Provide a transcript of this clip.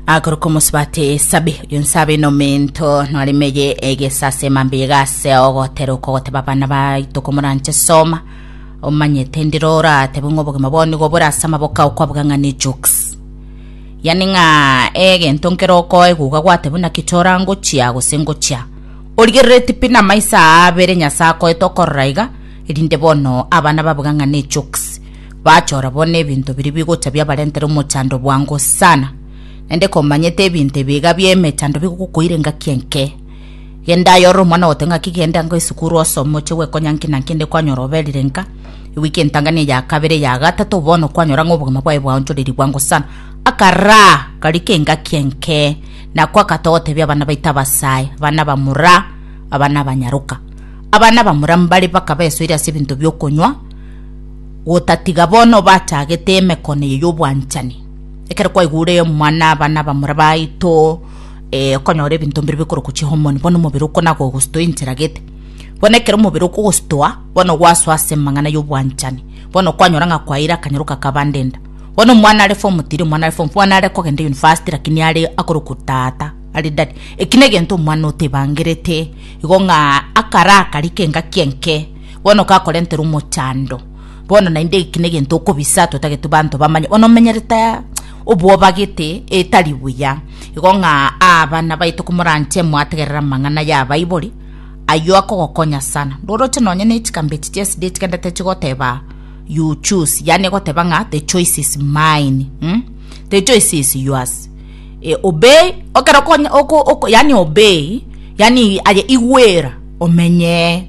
akoroka omosubati esabi oyo nsabe nomento nwaremeye egesase mambe egase ogotera okogoteba abana baito komoranche soma omanyete ndiro oratebe ng'a obogima bwao nigo bore ase amaboka ao kwabuga ng'a ne jokes yani ng'a egento nkero okoe guga gwate buna kichora ngochia gose ngochia origerereti pi na amaiso aa abere nyasae akoete okorora iga erinde bono abana babuga ng'a ne jokes Bachora bono ebinto biria bigocha biabarentera omochando bwango sana, naende komanyete ebinto ebi iga bi'emechando bigokokoira engaki enke. Genda aye ore omwana ogote ng'aki genda nka esukuru osome oche gwekonya nki na nki inde kwanyora oberire nka ewiki entang'ani eya kabere eya gatato bono kwanyora ng'a obogima bwaye bwaonchoreiri bwango sana. Akaraa kari k'engaki enke, nakwo akata ogotebia abana baito abasae, abana bamura, abana abanyaroka. Abana bamura mbare bakaba esoiri ase ebinto bi'okonywa, gotatiga bono obachagete emekone eye y'obwanchani, ekero kwaigure omwana aba nabamura baito, okonyora ebinto mbire bikorokwa chihomoni, bono omobere oko nagogostoa enchera gete. Bono ekero omobere okogostoa, bono gwasoa ase amang'ana y'obwanchani, bono kwanyora ng'a kwaeire akanyoroka kabandenda. Bono omwana are form three, omwana are form four, bono are kogenda university lakini are akorokwa tata, are daddy. Eki negento omwana otebangerete, igo ng'a akare akari k'engaki enke. Bono gakorentera omochando. Bono naende eki negento okobisa totagetwe banto bamanye bono omenyerete obwoba gete etari buya. Igo ng'a abana baito komoranche mwategerera amang'ana y'abaibori, ayio akogokonya sana. Roroche nonye ne chikambe echi chia esidi echigendete chigoteba you choose, yaani egoteba ng'a the choice is mine, mm? the choice is yours. E, obey, okero okonya- oko- oko- yaani obey, yaani aye igwera, omenyee.